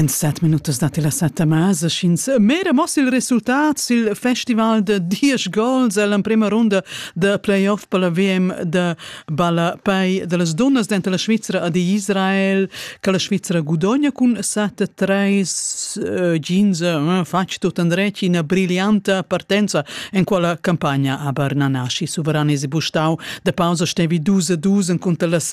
En set minutas datti la setta mesa sch'ins mera moss il resultat sil festival da diesch gols ell'emprema runda da playoff per la VM da ballapei da las dunnas denter la Svizra ed Israel che la Svizra gudogna cun sette treis eh, jeans eh, fatg tut andretg ina brillanta partenza en quella campagna aber Nanashi suveran e bustau da pausa stevi dus a dus cunter las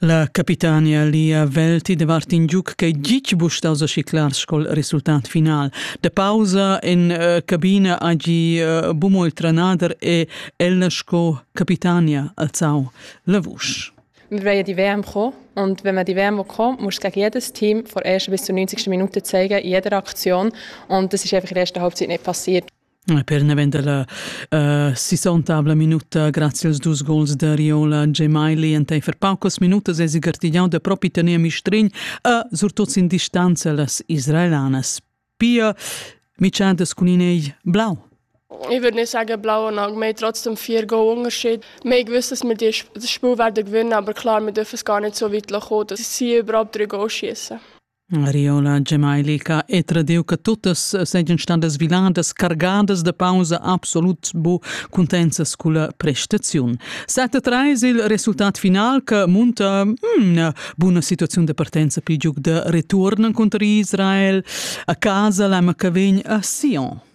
La capitania Lia Velti de Martin Giuc che gitg bustas a ciclar scol resultat final. De pausa in uh, cabina agi uh, bumo il tranader e ella sco capitania alzau la vusch. Wir werden die WM kommen und wenn wir die WM kommen muss ich jedes Team vor ersten bis zur 90. Minute zeigen, in jeder Aktion und das ist einfach in der ersten Halbzeit nicht passiert. Per naven dalla uh, sissontavla minuta grazie als dus gols da Riola Gemaili enteifer paucas minutas esi gartigliau da propi tener mistrign a surtot sin distanza las israelanas. Pia Michadas cun in blau. Ich würde nicht sagen blau und Augen, wir haben trotzdem vier Goal-Unterschied. Wir haben gewusst, dass wir das Spiel werden gewinnen, aber klar, wir dürfen es gar nicht so weit kommen. dass sie überhaupt drei Goal schießen. Riola Gemailica e tradiu che tuttas seigien stadas viladas cargadas de pausa absolut bu cuntenzas culla prestaziun. Sette treis il resultat final che munta mm, buna situaziun de partenza pigiug de return contra Israel a casa la ma che vegn a Sion.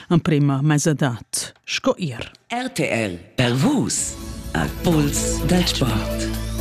emprema mesadad sco ir. RTL per Vus al pols dal sport.